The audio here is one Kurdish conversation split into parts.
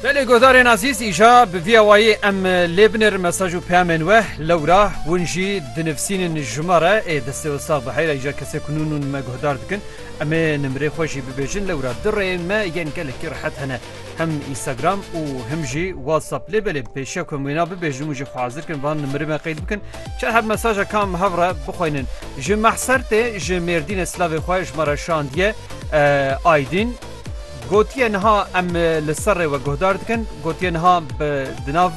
Belê guhdarên ezîz îja bi vî awayî em lê binêrin mesaj û peyamên we lewra hûn jî dinivîsînin ji me re ê destê Ustaz bi heyra îja kesê ku nûn nûn me guhdar dikin em ê nimrê xwe jî bibêjin lewra di rêyên me yên gelekî rehet hene hem Instagram û him jî WhatsApp lê belê pêşiya ku em wêna bibêjin û jî xwe hazir kin van nimrê me qeyd bikin çar her mesaja kam hev re bixweynin ji mehser tê ji mêrdînê silavê xwe ji me re şandiye Aydin gotiye niha em li serrê we guhdar dikin, gotiye niha di nav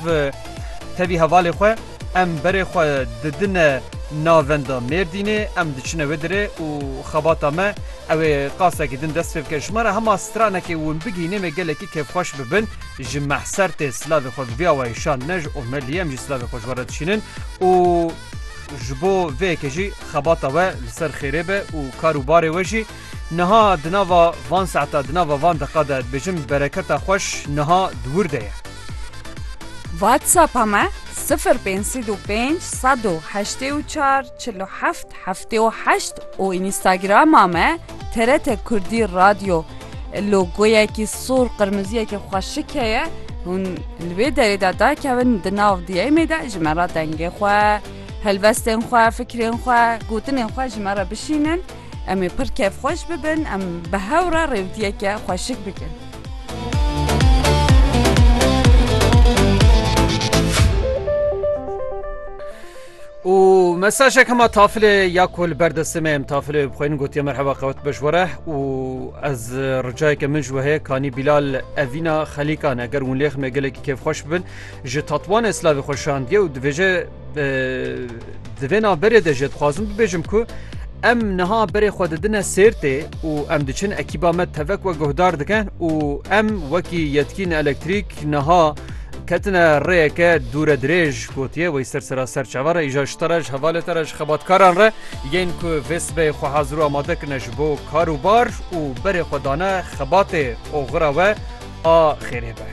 tevî hevalê xwe em berê xwe didine navenda Mêrdînê, em diçine wê dirê û xebata me ew ê qasekî din dest pê bike. Ji me re hema stranekê win bigihîne me gelekî kêfxweş bibin. Ji mehser tê silavê xwe bi vî awayî şandine ji omeliyê em jî silavê xwe ji we re dişînin û Ji bo vê yekê jî xebata we li ser xêrê be û kar û barê we jî niha di nava van saeta di nava van deqa de dibêjim bereketa xweş niha di wir de ye. Whatsapp-a me sifir pênc sîd û pênc sed û heştê û çar çil û heft heftê û heşt û Instagram-a me TRT Kurdî Radyo logoyekî sor qirmiziyekî xweşik heye hûn li wê derê de dakevin di nav diyemê de ji me re dengê xwe helbestên xwe fikirên xwe gotinên xwe ji me re bişînin em ê pir kevxweş bibin em bi hew re rêwdiyeke xweşik bikin. û mesajek hema tafilê ya ku li ber destê me em tafilê bi xwênin gotiye merheba qewet beş were û ez ricayeke min ji we heye kanî Bîlal evîna xelîkan eger hûn lêx me gelekî kêfxweş bibin ji tatwanê slavê xwe şandiye û divêje di vê naberê de jê dixwazim bibêjim ku em niha berê xwe didine sêrtê û em diçin ekîba me tevek we guhdar dikin û em wekî yetkîn elektrîk niha Ketine rêyeke dûre dirêj gotiye wey ser sera ser çava re îja ji te re ji hevalê te re ji xebatkaran re yên ku vê sibê xwe hazir û amade kirine ji bo kar û bar û berê xwe dane xebatê oxira we a xêrê be.